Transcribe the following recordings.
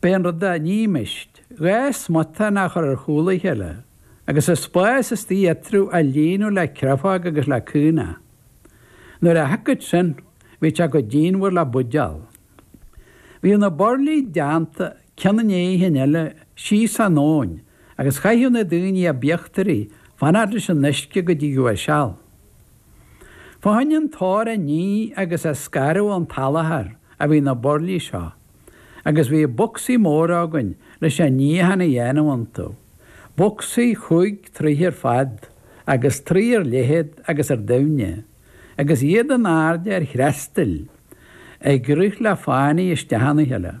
B'é an rud a nímist dhá smután a chur ar chúl a chéile agus an spás istigh eatarthu a líonadh le créafóg agus le caonach. Nuair a shiocfadh sin, bhí sé chomh díonmhar le buidéal. Bhíodh na burlaí déanta cionn i ndéidh an chinn eile síos an abhainn agus chaitheadh na daoine ab íochtaraí fanacht leis an uisce go dtigeadh a seal. Fá choinne an t-ór a ní agus a scaradh ón tsalachar a bhí na burlaí seo, agus bhí bocsaí móra againn leis an níochán a dhéanamh iontu, bocsaí cúig troithe ar fad agus troigh ar leithead agus ar doimhne, agus iad in airde ar threastail ag rith le fánaidh isteach ina chéile.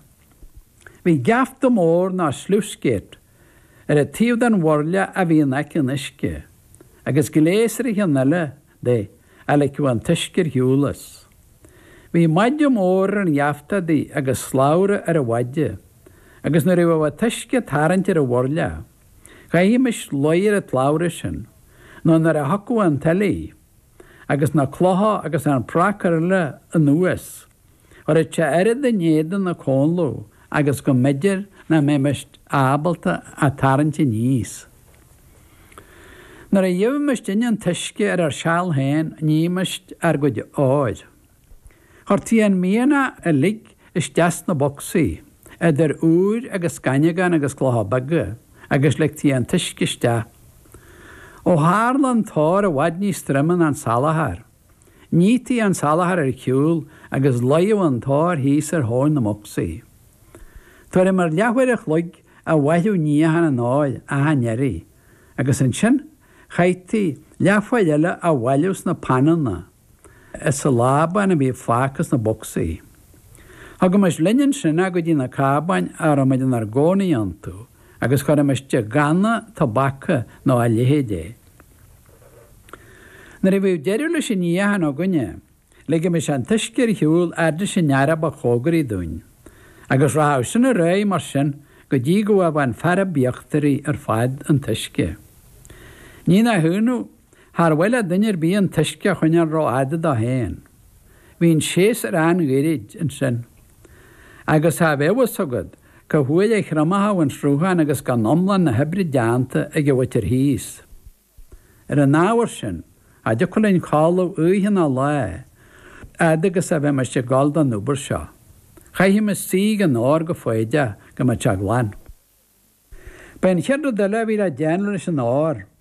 Bhí geafta mór ná sluice-gate Ar an taobh den bhurla a bhí in aice an uisce, agus gléas ar an chionn eile di, a ligfeadh an t-uisce ar shiúl as. Bhí maide mór ar an gheafta adaí agus slabhra ar an mhaide, agus nuair a bheadh an t-uisce ag tarraingt ar an bhurla, chaithimis luí ar an tslabhra sin, nó nuair a thiocfadh an tuile, agus na clocha agus an pracar eile anuas, chuireadh sé oiread in éadan na comhladh agus go mb'fhéidir nach mbeimis ábalta a tarraingt aníos. Nuair a gheibhimist inne an t-uisce ar ár seal féin nímist ár gcuid óir. Chuirtí an mianach uilig isteach sna bocsaí, idir úir agus scaineagán agus clocha beaga, agus ligtí an t-uisce isteach. Ó tharla an t-ór i bhfad níos troime ná an salachar, Nítí an salachar ar shiúl agus luíodh an t-ór thíos ar thóin na mbocsaí. Tuairim ar leathuair a chloig a mhaireadh níochán an óir achan iarraidh, agus ansin chaithtí leathuair eile á bhailiú sna pananna as an lábán a bhí fágtha sna bocsaí. Thugaimis linn ansin é go dtí na cábáin a rabhamid inár gcónaí iontu agus chuirimis i gcanna tobaca nó a leithéid é. Nuair a bhíodh deireadh leis an níochán againne, ligimis an t-uisce ar shiúl fhad leis an fhear ba chomhgaraí dúinn, agus rachadh sin ar aghaidh mar sin go dtí go bhfaigheadh an fear ab íochtaraí ar fad an t-uisce. Ní nach ionadh, char mhaith le duine ar bith an t-uisce a choinneáil rófhada dó féin. Bhí an séasúr an-ghairid ansin, agus cha bheadh a fhios agat, Cá huair a thriomóchadh an sruthán agus gan iomlán na hoibre déanta ag an mhuintir thíos. Ar an ábhar sin, cha dtiocfadh linn codladh oíche ná lae, fhad agus a bheimis ag gabháil don obair seo. Chaithimis suí ag an ór go foighdeach go mbeadh sé glan. Ba é an chéad rud eile a bhí le déanamh leis an ór,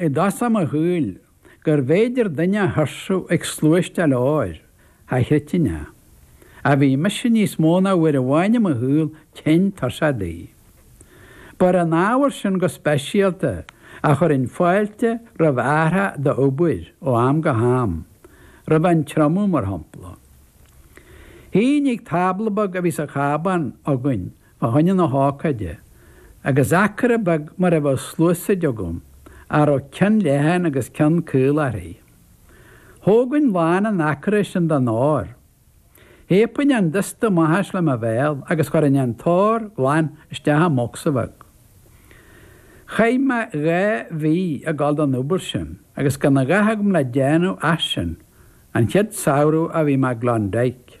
i dtús mo shaoil, gurbh fhéidir duine a thuirsiú ag sluaisteáil óir cha chreidfinn é. Ach bhí mise níos mó ná uair amháin i mo shaol tinn tuirseach de. Ba ar an ábhar sin go speisialta a chuirinn fáilte roimh athrach d'obair ó am go ham, roimh an triomú, mar shampla. Shuínn ag tábla beag a bhí sa chábán againn fá choinne na hócáide, agus acra beag mar a bheadh sluasaid agam, a raibh ceann leathan agus ceann caol uirthi. Thógainn lán an acra sin den ór. Shíobainn an dusta amach as le mo bhéal agus chuirinn an t-ór glan isteach i mbocsa bheag. Chaith mé dhá mhí ag dul don obair sin agus gan a dhath agam le déanamh ach sin, an chéad samhradh a bhí mé i gClondyke.